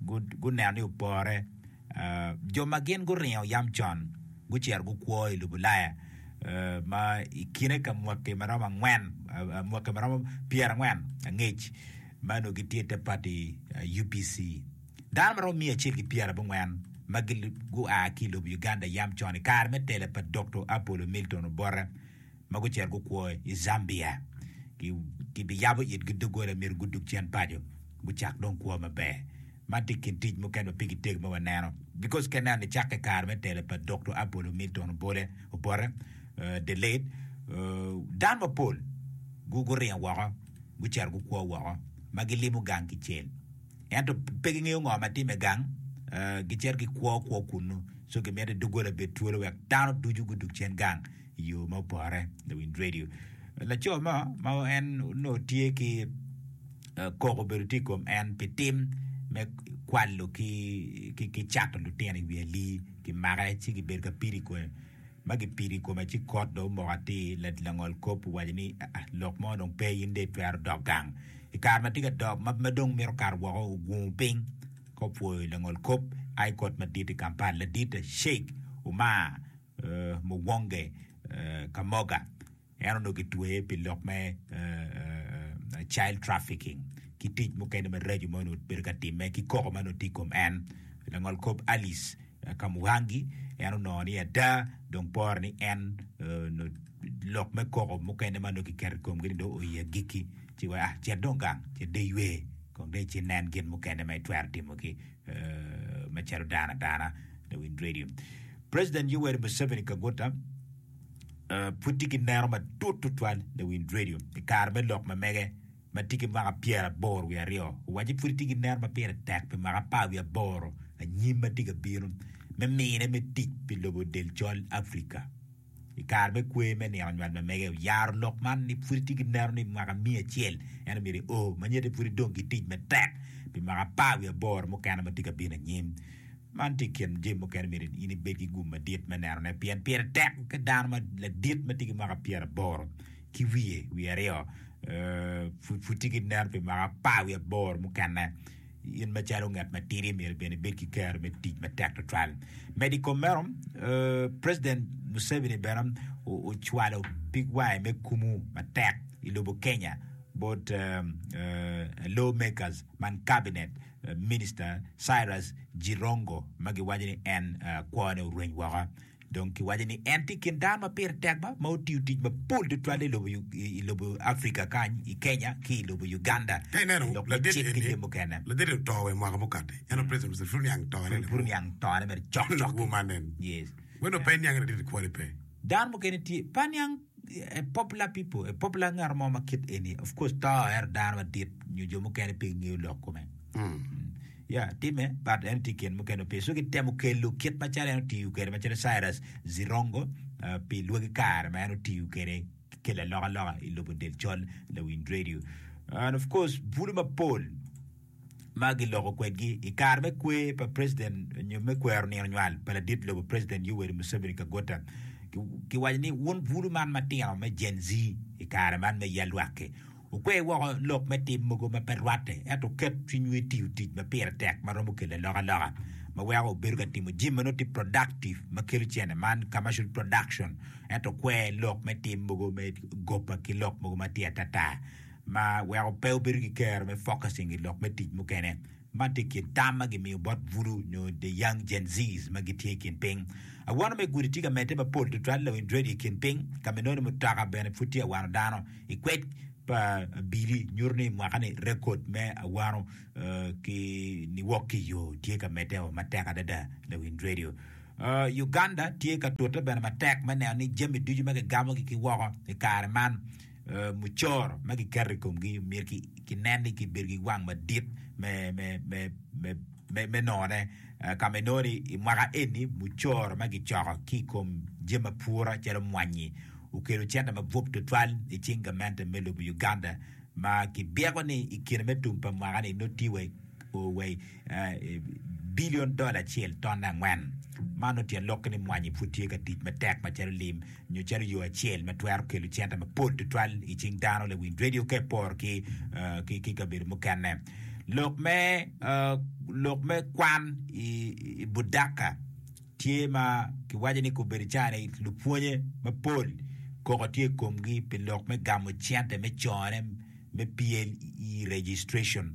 guneno ni opore. Jo ma gin guringo yam con gucito gukwo i Lubulaya ma i kine ka mwaki ma romo angwen, mwaki ma romo pyerangwen angec ma onongo gitye te pati UPC. Dano ma romo miya acel ki pyerabongwen ma gua ki lobo Uganda yam con i kare me telo pa Dokto Apollo Milton Obote ma gucito gukwo i Zambia kibiyabo itgi doggola myero gudug cen paco gucak dong kwo maber. Man tye i kin tic mukene ma pigi tek ma waneno bicos ka ineno nicakke i kare me telo pa Doctor Apollo Milton Obole, Obote, the late, dano mapol guringo woko gucito gukwo woko ma gilimo gang kicel ento pe gingeyo ngo ma timme gang gicito gikwo kwo kunnu so kimiti doggola bed twolo wek dano ducu gudug cen gang. yo ma opore lawind radio laco mo ma en onongo tye ki koko obedo tye i kom en pi tim me kwalo ki cato lutino i wi ali ki make ci ki bedo ka pido i kome ma ki pido i kome ci kot dong omoko atir langol kop owaco ni lok mo dong pe in dong itwero dok gang i kare ma tye ka dok ma dong mito kato woko ogungu piny ka opwoyo langol kop aye kot madit i Kampala ladit Sheik Umar Muwonge Kamoga en onongo kitweye pi lok me child trafficking ki tic mukene maraco ma onongo bedo ka timme ki koko ma onongo tye i kom en. Langol kop Alice Kamuhangi en onongo ni ada dong pore ni en onongo lok me koko mukene ma onongo kiketo i komgi ni dong oye agikki ci weko ah cet dong gang cet dong iywe kong dong ici nen gin mukene ma itwero timo ki me calo dano adana lawiny redio. President Yoweri Museveni Kaguta pud tye ki neno matut tutwal lawiny redio i kare me lok ma mege ma tye ki mwaka pyeraboro wiye aryo. Owaco ni pud tye ki neno ma pire tek pi mwaka apar wiye aboro anyim ma tye ka bino me mine me tic pi lobo del col Africa. I kare me kwer me nino nywal ma mege, oyaro lok man ni pwod itye ki neno ni mwaka miya acel en omyero i oo ma nyete pwod idong ki tic matek pi mwaka apar wiye aboro mukene ma tye ka bino anyim. Man tye i kin jami mukene myero in ibed ki gum madit me neno ne pien pire tek ki dano ma ladit ma tye ki mwaka pyera aboro ki wiye wiye aryo pwod tye ki neno pi mwaka apar wiye aboro mukene. In macalo ngat matidi myero bene ibed ki kero me tic matek tutwal. Medo i kom meno, President Museveni bene ocwalo pig wange me kumu matek i lobo Kenya bot lawmakers man Cabinet Minister Cyrus Jirongo ma giwaco ni en kwone orweny woko. Dong kiwaco ni en tye i kin dano ma pire tek ma otiyo tic mapol tutwal i lobo Africa kany, i Kenya ki i lobo Uganda dok me cik ki jami mukene. Pud oniang tone mere cok cok-ki. Dano mukene tye. a popular people, a popular ngat mo ma kit eni, of course to er dano madit nyo jo mukene pe ngeyo lok kome. Mm. Ya, time, but en tye ken mukene ope. So kitemo kelo kit macalo en otiyo kwede macalo Cyrus Zirongo uh, pi lwagi kare ma en otiyo kwede kelo alokaloka i lobo del col lawiny radio. And of course, bulu mapol ma giloko kwedgi i kare me kwer pa president nyo me kwero nino nywal pa ladit lobo president Yoweri Museveni Kagota ki waco ni wun bulu man matino me Gen Z i kare man me yal lwakki wukwe woko lok me tim mogo ma pe rwatte ento wuket cwinywu i tiyo tic ma pire tek ma romo kelo alokaloka ma weko wubedo ka timo jami ma nongo tye productive ma kelo cene man commercial production ento kwer lok me tim mogo me goba ki lok mogo ma tye atata. ma weko pe obedo ki kero me focusing i lok me tic mukene, man tye i kin tam ma gimiyo bot Voodoo nyo The Young Gen Zs ma gitye i kin piny. Awano me gudi tye ka medde mapol tutwal lawiny redio i kin piny, ka ma inongo ni mutoka bene pud tye awano dano. I kwed pa Billy nyuto ni mwaka ni rekod me awano ki niwok ki yo tye ka medde o matek adada lawiny redio. Uganda tye ka tute bene matek me neno ni jami ducu ma kigamo gi ki woko i kare man mucoro ma kiketo i komgi myero kinen ni kibedo ki wang madit me none, ka ma inongo ni i mwaka eni mucoro ma kicoko ki i kom jami ma pure calo mwanyi okelo cente mabup tutwal i cing gamente me lobo Uganda ma kibyeko ni i kine me tum pa mwaka-ni nongo tye wa i bilion dola acel ton angwen. Man otyen lokke ni mwanyi pud tye ka tic matek macalo lim nyo calo yo acel ma twero kelo cente mapol tutwal i cing dano, lawind redio ka eporo ki kabedo mukene. Lok me lok me kwan i Budaka tye ma kiwaco ni kobedo cani lupwonye mapol koko tye i komgi pi lok me gamo cente me cone me PLE registration.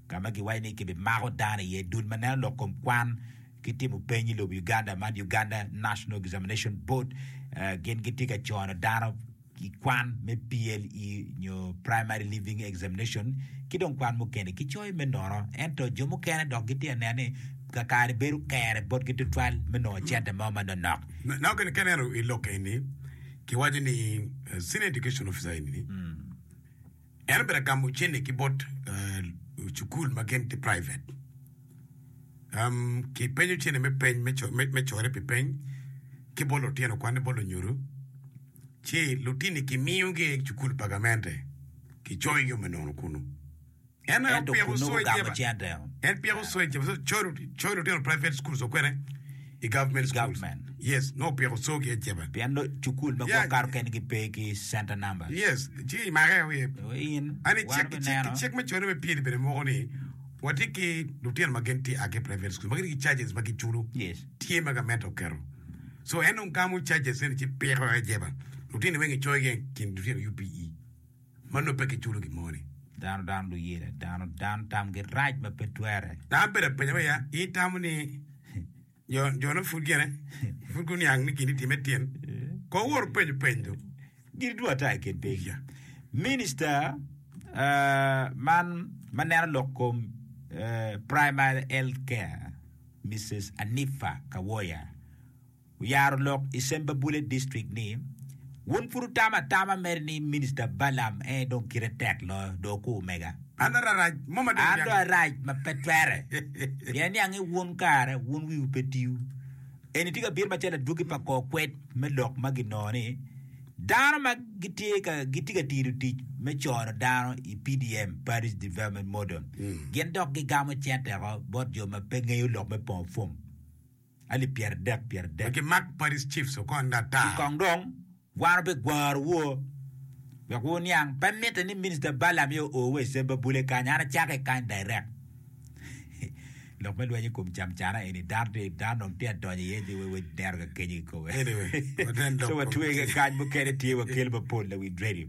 ka ma giwaco ni kibimako dano iye, dul ma neno lok kom kwan ki timo peny i lobo Uganda man Uganda National Examination Board gin gitye ka cono dano i kwan me PLE nyo Primary Leaving Examination ki dong kwan mukene kicoyo me nono ento jo mukene dok gitye ka neno ni kakare bedo kere botgi tutwal me nongo cente mo ma nonok. Naka kene ka ineno i lok eni kiwaco ni Senior Education Officer eni En obedo ka gamo cente ki bot cukul ma gin tye private. Um, kipenyo cente me peny, me co- me- me core pi peny ki bot lutino kwanne bot lunyodo, ci lutini kimiyogi i cukul pa gamente, kicoyogi o me nono kunu. En aye Ento opiko kun nongo coyo gamo jeba. cente. En piko coyo jeba, coyo coyo lutino private schools o kwene. i government schools. Pien dong cukul me gwok kato kene gipe ki center number. I cik me conne bene moko ni watye ki lutino ma gin tye a ki i private schools ma gitye ki charges ma giculo tye ma gament oketo. So en dong gamo charges eni ci piko aye jeba. Lutini weng icoyo gi i kin lutino UPE. ma nongo pe kiculo gin mo ni. Dano dano luyela dano dano tamgi rac ma pe twere. Dano bedo apenya me ya in itamo ni jo jo ne pud gene pud guniang ni gin itime tin ko wor penyo peny do. Gin duwa ata i kin piny. Yeah. Minister uh, man ma neno lok kom uh, primary health care Mrs. Anifa Kawoya Oyaro lok i Sembabule District ni, Wun pud wutamo atama mere ni Minista Balaam en aye dong kite tek loyo, dong okur mega. An do arac mo ma dong niange. An do arac ma pe twere. Pien niang ni wun kare wun wiwu pe tiwu. Eni tye ka bino macalo adwogi pa kor kwed me lok ma ginongo ni, Dano ma gitye ka gitye ka tino tic me cono dano i PDM, Parish Development Model, gin dok gigamo cente oko bot jo ma pe ngeyo lok me pongo fom. alip pyeradek pyeradek. Wek imak Paris Chiefs okony ata. Ki kong dong wan wubigwaro wo wek wu niang. Pe mitte ni Minister Balaam aye o wa i Semba Bule kany, an acako i kany direct. Lok me lweny i kom camcana eni dano tye dano dong tye adonyo iye ni we neno ka kenyo kikobe. Anyway, wanen dok So watwege kany mukene tye wakel mapol na Wind Radio.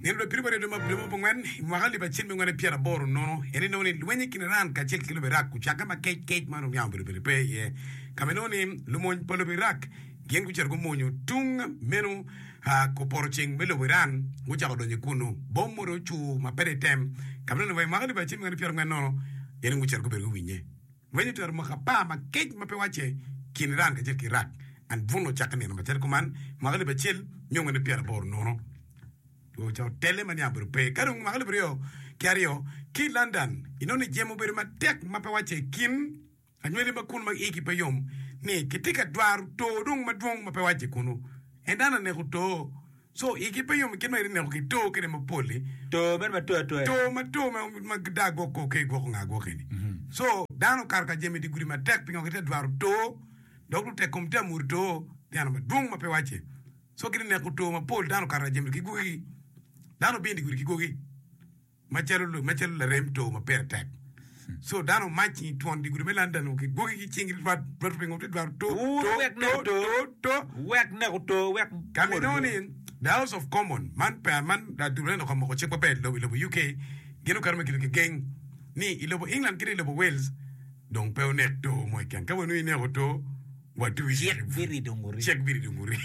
Meno dong pire wari adwogi ma obedo mapongwen i mwaka alip acel me ngwen pyera boro nono en inongo ni lweny i kin Iran kacel ki lobo Iraq ocakke ma kec kec ma onongo yamo obedo bene pe iye kama inongo ni lumony pa lobo Iraq gin gucito gumonyo tung meno koporo ceng me lobo Iran gucako donyo ikunu bom modo ocur ma pede item kama inongo ni wa i mwaka alip acel me ngwen pyera ngwen nono gin gucito gubedo guwinye Weny otero mwaka apar ma kec ma pe wacce kin Iran kacel ki Iraq, and bun ocakke nino macalo kuman mwaka alip acel nyo nge nio pyeraboro nono, dwe ca otelle ma niang obedo pe. Ka dong mwaka alip aryo ki aryo ki i London, inongo ni jemo obedo matek ma pe wacce kin anywali ma kunu ma igi pe yom ni kitye ka dwaro too dong madwong ma pe wacce kunu, en dano aneko too. Co igi pe yom kit ma gitye ka neko ki to kene mapol-li. To mere ma to atoya. To ma to ma gidaa gwok kor ke gwoko ngaa gwokeni. Co dano okato ka jami dye gudi matek pingo gitye ka dwaro to, dok lutek kom tye ka muru to dyana madwong ma pe wacce. Co gitye ka neko to mapol, dano okato ka jami ki gwokigi. Dano obino dye gudi ki gwoki. macalo larem too ma pire tek. So dano omac i twon dye gudi me London o gwoki ki cing rwat pingo te dwaro too too too too wek neko too wek ka mi nongo ni the house of common man peya man adul eno ka moko cik ma ber i lobo UK gin okato me kelo ki geng ni i lobo England kede i lobo Wales dong pe onek too mo keken ka wenu ineko too watu i cik birido nguri.